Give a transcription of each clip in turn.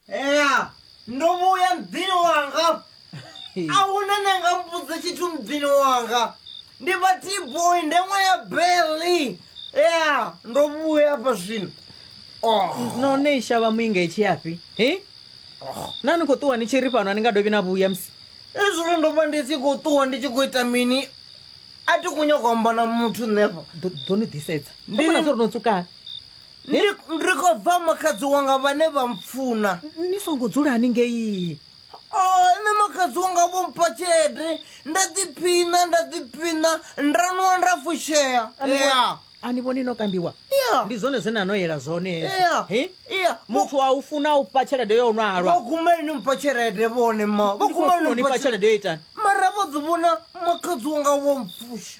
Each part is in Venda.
ea ndo vhuya mudzini wanga a huna ne nga mbudza tshithu mudzini wanga ndi vha tboy nde ṅwa ya beli ea ndo vhuya afha zwino Oh. no ne i shavha muinga i tshi yafhi he na ni khou ṱuwa ni tshi ri fhano a ni nga dovhi na vhuya musi ezwino ndo vha ndi tshi khou ṱuwa ndi tshi khou ita mini a thi khou nyaka u amba na muthu nṋefha Ḓo- ḓo ni ḓisedza Ndi- ndi no tsukana Ndi, ndi khou bva makhadzi wanga vhane vha mpfuna. Ni songo dzulani ngei. O, nṋe makhadzi wanga vho mpha tshelede, nda ḓiphiṋa, nda ḓiphiṋa, nda nwa nda fushea. Ya. A ni vhoni no kambiwa? Ya. Ndi zwone zwe na no yela zwone hezwo. Ya. He? Ya. Muthu a u funa u fha tshelede yo nwa halwa. Vho guma ni mpha tshelede vhone ma. Vho Ndi khou guma funa u ni ni fha fha tshelede. tshelede yo itani? Mara vho ḓi vhona makhadzi wanga vho mpfusha.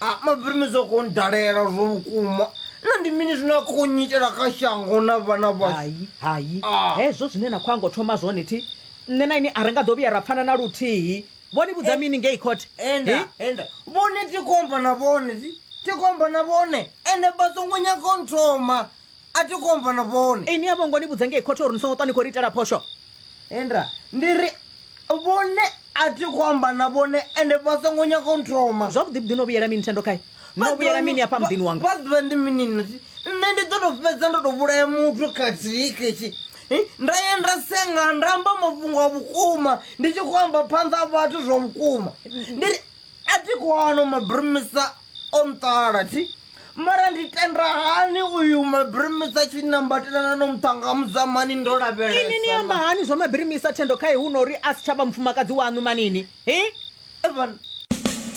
A Mabrini zwo khou ndalela zwo vhukuma na ndi mini zwine a khou nyitela kha shango na vhana vhashu hai hai Ah. hezwo zwine na khou anga u thoma zwone thi nṋe na ini a ri nga ḓo vhuya ra pfana na luthihi vho ni vhudza mini ngei court enda Hi? enda vhone tikomba na vhone ti- tikomba na vhone ende vha songo nyaga u nthoma a thi khou amba na vhone ini a vho ngo ni vhudza ngei khothe uri ni songo ṱwa ni khou ri itela phosho enda ndi ri vhone a thi khou amba na vhone ende vha songo nyaga u nthoma zwavhuḓi vhuḓi no vhuyela mini thendo khae no vhuyela mini afha muḓini wanga vha ḓivha ndi mini nati nṋe ndi ḓo to fhedza ndo to vhulaya muthu khathihi ketshi nda ye nda senga nda amba mafhungo a vhukuma ndi tshi khou amba phanḓa a vhathu zwa vhukuma ndi ri a thi khou ano mabrimisa o nṱala thi mara ndi tenda hani uyu mabirimisa tshi nambatelana no muṱhanga mudza mani ndo ini ni amba lavhelesa hani zwa mabirimisa thendo kha ihu nori a si tsha vha mufumakadzi waṋu manini hi evan